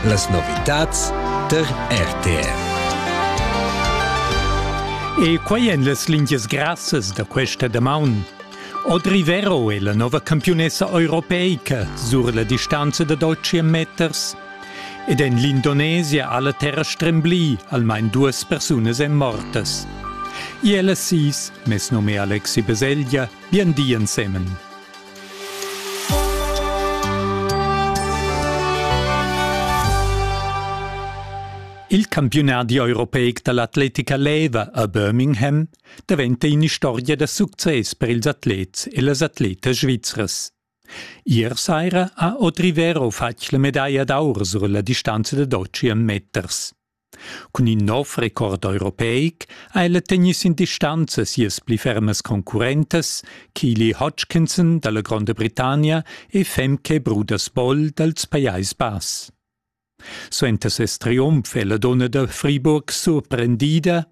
Las novitads tar RTR. E quai èn las lingias grassas da questa damaun. Audrey Vero è la nova campiunessa europeica sur la distanza da 12 meters. Ed en l'Indonesia ha la terra stremblì, almain duas persunas èn mortas. Ella sis, mes num è Alexi Beseglia, bien di ensemen. Il campiunadi europeic da l'atletica leva a Birmingham daventa in'istorgia da success per ils atlets e las atletas svizras. Ier saira ha Audrey Vero fatg la medaglia d'aur sur la distanza da 12 meters. Cun in nov record europeic ha ella tegnì sin distanza sias pli fermas concurrentas, Keely Hodgkinson dalla Gronda Britannia e Femke Brudersboll dals Pajais Bass. Suenter ses triumf è la donna da Friburg surprendida.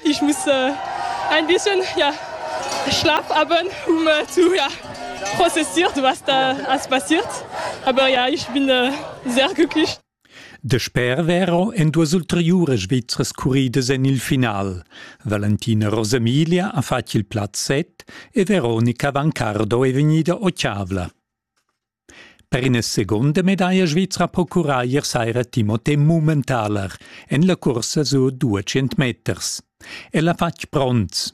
Ich muss äh, ein bisschen ja, schlappabend, um äh, zu ja, prozessiert, was da alles passiert. Aber ja, ich bin äh, sehr glücklich. Dasper vero èn duas ulteriuras Svizras curridas en il final. Valentina Rosamilia ha fatg il plaz set e Veronica Vancardo è vegnida ottavla. Per ina seconda medaglia svizra po curraglier saira Timothée Mummentaler en la cursa sur 200 meters. El ha fatg bronz.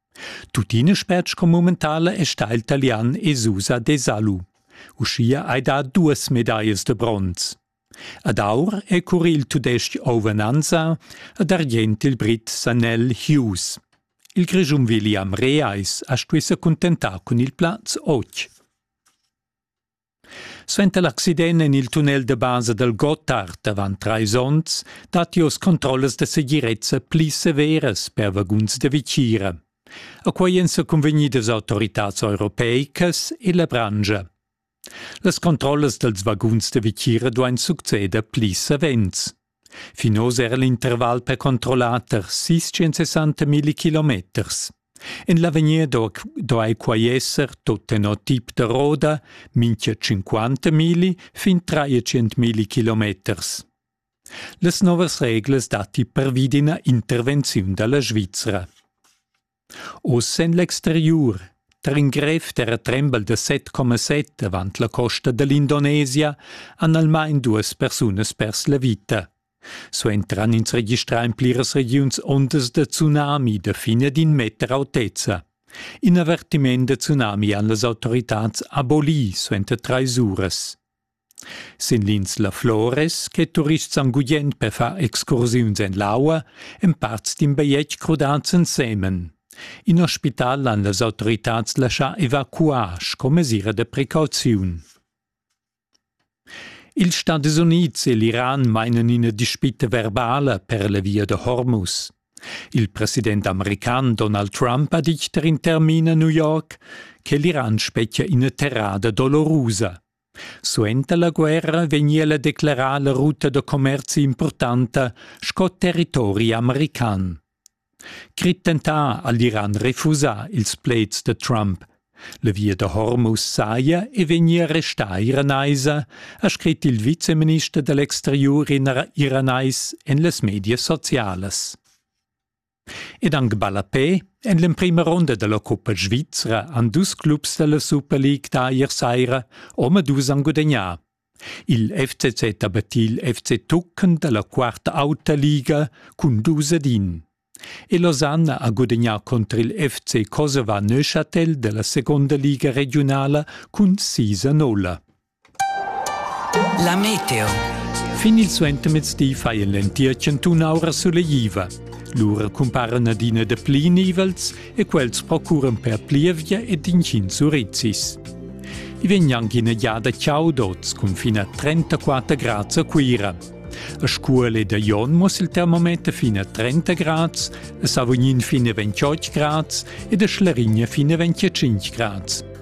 Tuttina spert sco momentala è stà il Talian Esusa Desalu. Uschia hai dà duas medaglias de bronz. Ad aur è cur il tudestg Ovananza ad argient il brit Sanel Hughes. Il Grischun William Reais ha stuì sa cuntentar cun il plaz 8. Suenter l'accident en il tunnel da basa dal Gottard avant trais onns datti oz controllas da segirezza pli severas per vaguns da vitgira. A quai èn sa cunvegnidas autoritads europeicas e la branscha. Las controllas dals vaguns da vitgira duain succeder pli savens. Fin oz era l'interval per controllar tar sis sessanta milli kilometers. En l'avegnir do, do ei quai esser tot tenor tip da roda minchia 50 milli fin 300 milli kilometers. Las novas reglas datti pervi d'ina intervenziun dalla Svizra. Oz en l'exteriur, tar in grev terratrembel da set coma set avant la costa da l'Indonesia han almain duas persunas pers la vita. Suentran ins registrà en pliras regiuns ondas da tsunami da fin ad in meter autezza. In avertiment da tsunami han las autoritads abolì suenter trais uras. Sin lins La Flores, che turists han gugent per far excursiuns en l'aua, èn parts d'in bajetg crudads ensemen. In ospital han las autoritads laschà evacuar sco mesira da precauziun. Ils Stadis Unids e l'Iran mainan ina dispita verbala per la via da Hormuz. Il president american Donald Trump ha ditg tar in termin a New York che l'Iran spetgia ina terrada dolorusa. Suenter la guerra vegni ella declarà la ruta da commerzi impurtanta sco territori american. Crit dentar ha l'Iran refusà ils pleds da Trump. La via da Hormuz saja e vegnia restà iranaisa, ha scrit il viceminister dall'exteriur iranais en las medias socialas. Ed anc ballapè en l'emprima ronda da la cuppa svizra han dus clubs da la Super League dà ier saira omadus han gudagnà. Il FCZ ha battì il FC Tucken da la quarta auta liga cun dus ad in. E Losanna ha gudagnà contr il FC Kosova Neuchâtel da la seconda liga regiunala cun sis a nolla. La meteo. Fin il suentermezdi fa en l'entir chantun aura sulegliva. Lura cumparan adina dapli nivels e quels procuran per plievgia ed intgins urizis. I vegn anche ina giada chaud oz cun fin a 34 grads a Cuira. A Scuol ed a Jon muss il termometer fin a 30 grads, a Savognin fin a 28 grads ed a Schlarigna fin a 25 grads.